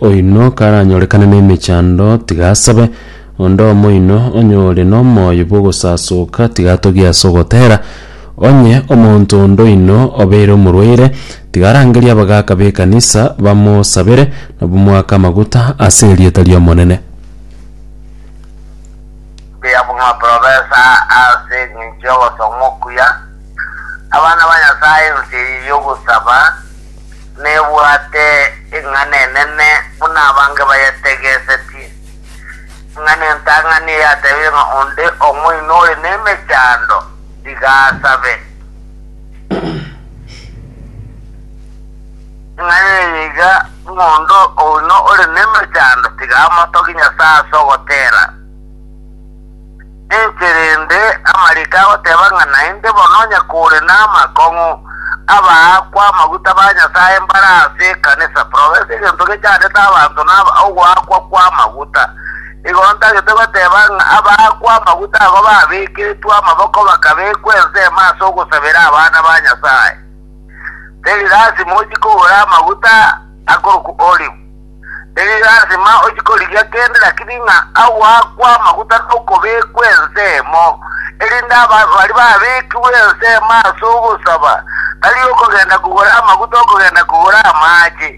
Oino karanyorekane nemechando, tiga asabe. Onde omoino onye ore nomoyo bw'ogosasoka, tiga atogie ase ogotera. Onye omonto onde oino obeire omorwaire, tiga arangerie abagaaka b'ekanisa bamosabere, na bamoake amaguta ase erieta ri'Omonene. Mbuya buna profesa ase engencho y'ogosoma okuya abana ba Nyasae ense eye y'ogosaba. nebwate eng'ana enene buna abange bayetegesetie, ng'a nentang'ani eyatebire ng'a onde omoino ore nemechando, tiga asabe. Eng'ana eye iga, ng'a onde oino ore nemechando, tiga amotogie Nyasae ase ogotera. Ninche rende amariko agoteba ng'a naende bono onye kore namakong'u, abaakwa amaguta ba Nyasae mbare ase ekanisa, progress egento gechandete abanto na ogoakwa kw'amaguta. Igo ntagete goteba ng'a abaakwa amaguta agwo babekeretwe amaboko bakabekwa ensemo ase ogosabera abana ba Nyasae. Teri lasima ochie kogora amaguta akorokwa olive. Erio yarasima ochi korigia kende rakiri ng'a agoakwe amaguta na okobekwa ensemo, erinde aba baria babekigwe ensemo ase ogosaba tari okogenda kogora amaguta okogenda kogora amaache,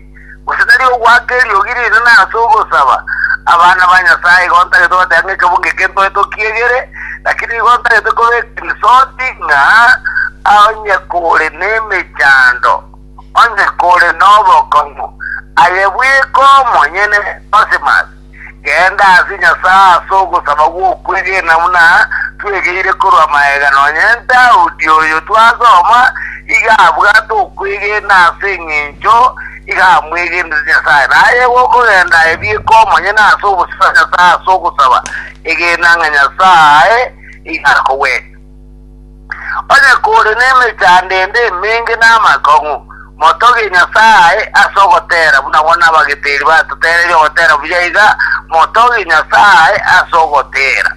gose tari ogoaka eriogi rinene ase ogosaba. Abana ba Nyasae igo ntagete goteba ng'a ekebungo eke ntoe tokiegere, rakini igo ntagete kobeka risoti ng'a onye kore nemechando. onde kore nobokong'u, aye bweka omonyene Onsimus, genda ase Nyasae as'ogosaba gw'okwegena buna twegeire korwa magega, nonye Daudi oyo twasoma iga abwate okwegena as'engencho iga amwegenire Nyasae. Naye gokogenda aye bweka omonyene as'obosie bwa Nyasae as'ogosaba, egena ng'a Nyasae iga akogwene. Onye kore nemechando ende emenge na amakong'u, motogie Nyasae ase ogotera, buna bono abageteri batotereire ogotera buya iga, motogie Nyasae ase ogotera.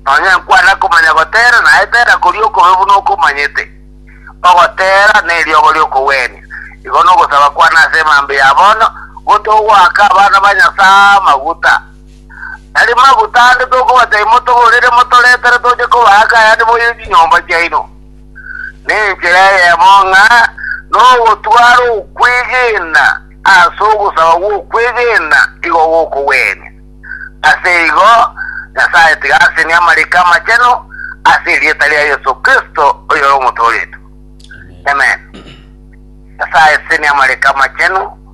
Nonya nkwana komanya gotera, naye tera koria okobe buna okomanyete. Ogotera neriogo ri'okogwenia. Igo nogosaba kwane ase emambia ya bono, gotogoaka abana ba Nyasae amaguta. Tari maguta ande tokobatebi motogorere motoretere toche kobaaka ayande moire chinyomba chiaino. Nenchera eyemo ng'a nogotwara okwegena ase ogosaba gw'okwegena igo gokogwenia. Ase igo, Nyasae tiga asenie amariko amachenu ase erieta ria Yeso Kristo oyore omotooretwe. Amen. Nyasae senia amariko amachenu.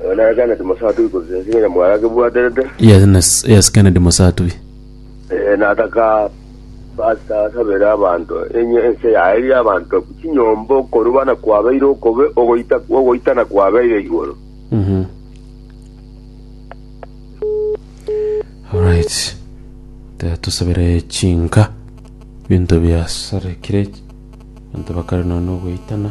Oyo nere Kennedy Mosatui korwa ense ya Nyamwaya akebwaterete. Yes, nes- yes, Kennedy Mosatui. Eh, nataka pastor asabere abanto enye ense yaeria abanto chinyomba okoruba na kwabeire okobe ogoita ogoitana kwabeire igoro Mhm. Alright. Taya tusabire chinka binto biasarekire banto bakare nono goitana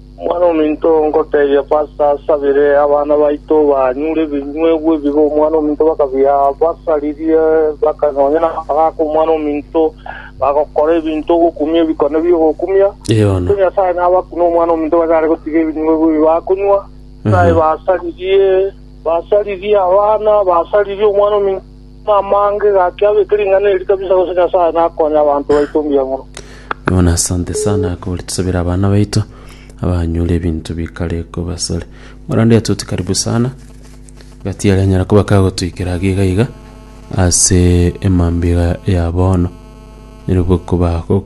Omwana-o-minto, ngoteebia Pasta, asabire abana baito banyure ebinywegwa ebibe Omwana-o-minto bakabia-basaririe, baka nonya namagaaka Omwana-o-minto, bagokora ebinto ogokumia ebikone bi'ogokumia. Yono. Korende Nyasae nabakune Omwana-o-minto bachare gotiga ebinywegwa ebi bakonywa. Nyasae basaririe, basaririe abana, basaririe Omwana-o-minto. Namange gaki abeke ring'ana eri kabisa gose Nyasaye nakonye abanto baito mbuya mono. Bwana asante sana kore tusabire abana baito abanyore ebinto bikare kobasare morande yatuti karibu sana gati yari anyara kuba kagotuikera age iga iga ase emambia iga ya bono nerobwo koba gokonye